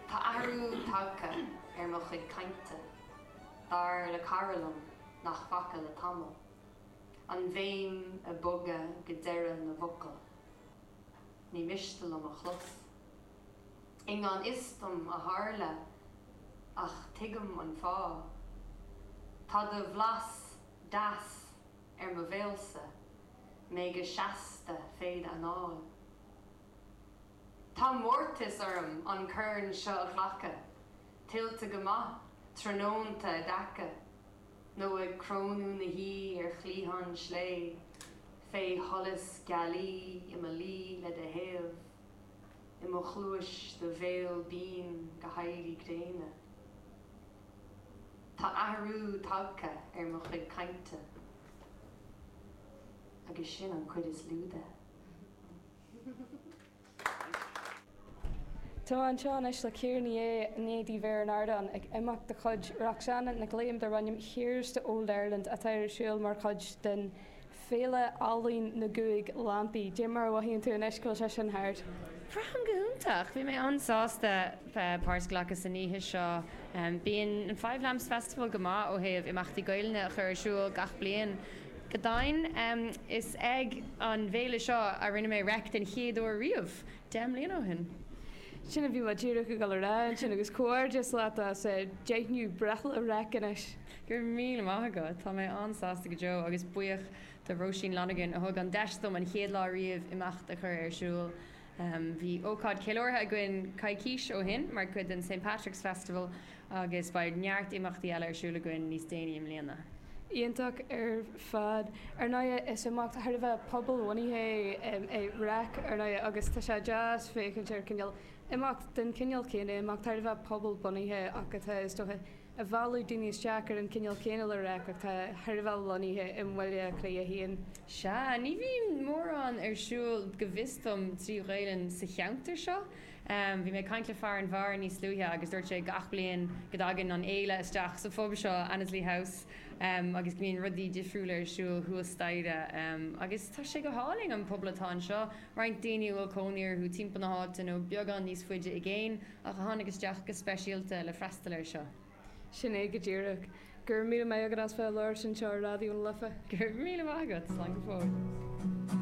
Tá athrú tagtha ar mo chuid cainte, dar le cara liom nach bhfaca le tamall. An bhéim ag bogadh go deireadh na bhfocal. Ní miste liom a chlos. I ngan fhios dom a tharla, ach tuigim an fáth. Tá do bhlas deas ar mo bhéalsa, mé go seasta féd anáil. Tá mórtas orm an corn seo a ghlacadh. Tuillte go maith, tráthnónta i dtaca, nó ag crónú na hoí' ar chliathán slé, fé sholas gealaí i mo luí le do thaobh, i mo chluais do bhéal binn go héirí gréine. Tá athrú tagtha ar mo chuid cainte, agus sin an chuid is lú de. Tá mé anseo anois le Ciara Ní É, i ndiaidh di bheith ar an ardán ag imeacht de chuid Roxanna Nic Liam darb ainm Here's to Old Ireland atá ar siúl mar chuid den Féile Ealaíon na gCúig Lampaí. Cad é mar a mhothaíonn tú anois go bhfuil sé sin thart. Braithim go hiontach. Bhí mé an-sásta páirt a ghlacadh san oíche seo. Bíonn an Five Lamps Festival go maith ó thaobh imeachtaí Gaelainne a chur ar siúl gach bliain. Go deimhin, is ag an bhféile seo a rinne mé Reic den chéad uair riamh, deich mbliana ó shin. Sin a bhí mé díreach ag dul a rá ansin, agus comhghairdeas leat as deichiú breithlá Reic anois. Go raibh míle maith agat, tá mé an-sásta go deo, agus buíoch do Róisín Lonergan a thug an deis dom an chéad lá riamh imeacht a chur ar siúl. Bhí ócáid ceiliúrtha againn coicís ó shin mar chuid den St. Patrick's Festival, Agus beidh neart imeachtaí eile ar siúl againn níos déanaí i mbliana. Iontach ar fad. Ar ndóighe, is imeacht thar a bheith pobal-bhunaithe é Reic, ar ndóighe, agus tá sé deas féachaint ar cineál imeacht den chineál céanna, imeacht thar a bheith pobal-bunaithe ach atá, is dócha, ag mealladh daoine isteach ar an chineál céanna le Reic ach tá thar a bheith lonnaithe i mBaile Átha Cliath a haon. Sea. Ní bhíonn mórán ar siúl, go bhfios dom, trí Ghaelainn sa cheantar seo. Bhí mé ag caint le fear an bheáir níos luaithe agus dúirt sé gach bliain go dtagann an fhéile isteach sa phub seo, Annesley House, agus go mbíonn rudaí difriúla ar siúl thuas staighre. Agus tá sé go hálainn, an pobal atá anseo. Roinnt daoine a bhfuil cónaí orthu timpeall na háite nó beagán níos faide i gcéin ach a tháinig isteach go speisialta le freastal air seo. Sin é go díreach. Go raibh míle maith agat as bheith ag labhairt anseo ar Raidió na Life. Go raibh míle maith agat. Slán go fóill.